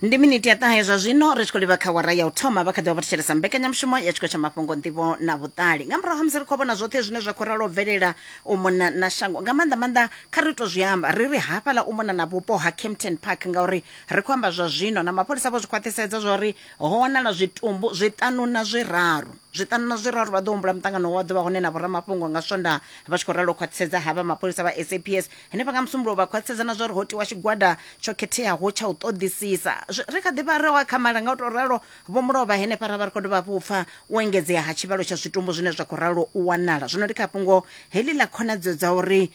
ndi miniti ya ṱahe zwa zwino ri tshi khou livha kha wara ya u thoma vha kha ḓi vha vha thetshelesa mbekanyamushumo ya tshiko tsha mafhungo nḓivho na vhuṱali nga murahu ha musi ri khou vhona zwoṱhe zwine zwa khou ralo bvelela u mona na shango nga maanḓa maanḓa kha ri to zwi amba ri ri hafhaḽa u mona na vhupo ha campton park ngauri ri khou amba zwa zwino na mapholisa vho zwi khwaṱhisedza zwa uri ho wanala zwitumbu zwiṱanu na zwiraru zwiṱanu na zwiraru vha ḓo humbula muṱangano wa ḓuvha hone na vhoramafhungo nga swondaha vha tshi khou ralo khwaṱhisedza havha mapholisa vha saps Henefha nga Musumbulowo vha khwaṱhisedza na zwa uri ho tiwa tshigwada tsho khetheaho tsha u ṱoḓisisa. Zwi- Ri kha ḓi vha ro akhamala nga u tou ralo Vho Mulovha henefha ra vha ri khou dovha hafhu u pfa u engedzea ha tshivhalo tsha zwitumbu zwine zwa khou ralo u wanala. Zwino ndi kha fhungo heḽi ḽa khonadzeo dza uri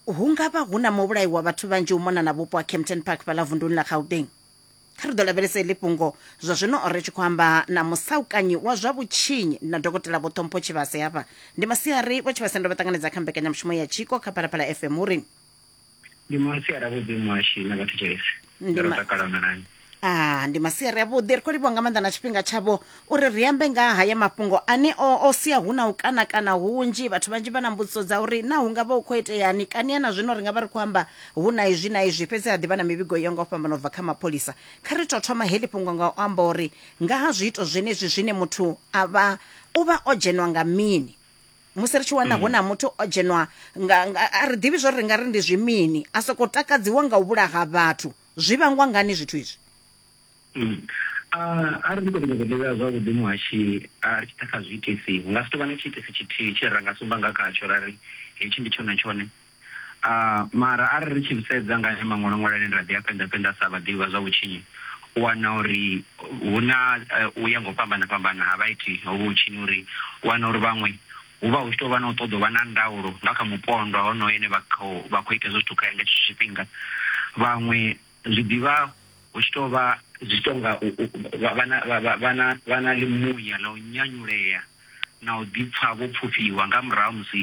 hu nga vha hu na muvhulayi wa vhathu vhanzhi u mona na vhupo ha Kempton Park fhaḽa vunduni ḽa Gauteng. kha ri ḓo lavhelesa iḽi fhungo zwa zwino ri tshi khou amba na musaukanyi wa zwa vhutshinyi na dokotela vho ṱhompho tshivhase hafha ndi masiari vho tshivhase ndo vha ṱanganedza kha mbekanyamushumo ya tshiko kha phalaphala fm uri ndi masiari avhuḓi muhashi na vhathetshelesi Ndi ndo ma- takala ngalani Ah, ndi masiari avhuḓi ri khou livhuwa nga maanḓa na tshifhinga tshavho Uri ri ambe nga ha haya mafhungo ane o, o sia hu na u kanakana hunzhi. Vhathu vhanzhi vha na mbudziso dza uri na hu nga vha hu khou iteani. Kania na zwino ri nga vha ri khou amba hu na izwi na izwi, fhedzi ha ḓi vha na mivhigo yo nga u fhambana u bva kha mapholisa. Kha ri tou thoma heḽi fhungo nga u amba uri nga ha zwiito zwenezwi zwine muthu a vha, u vha o dzhenwa nga mini. Musi ri tshi wana hu na muthu o dzhenwa nga, nga, a ri ḓivhi zwo ri nga ri ndi zwi mini, a sokou takadziwa nga u vhulaha vhathu. Zwi vhangwa ngani zwithu izwi? Arali ndi khou lingedza u tevhela zwavhuḓi muhashi a ri tshi ḓa kha zwiitisi, hu nga si tou vha na tshiitisi tshithihi tshine ra nga sumba nga khatsho ra ri hetshi ndi tshone tshone. Mara arali ri tshi sedza nga haya maṅwalo ṅwalo ane ra ḓi a penḓa penḓa sa vhaḓivhi vha zwa vhutshinyi, u wana uri hu na u ya nga u fhambana fhambana ha vhaiti hovhu vhutshinyi uri u wana uri vhaṅwe hu vha hu tshi tou vha na u ṱoḓa u vha na ndaulo nga kha mupondwa honoyo ane vha khou ita hezwo zwithu khae nga tshetsho tshifhinga. Vhaṅwe Zwi ḓi vha hu tshi tou vha zwi tshi tou nga u vha na, vha, vha, vha na, vha na ḽimuya ḽa u nyanyulea na u ḓipfa vho pfufhiwa nga murahu ha musi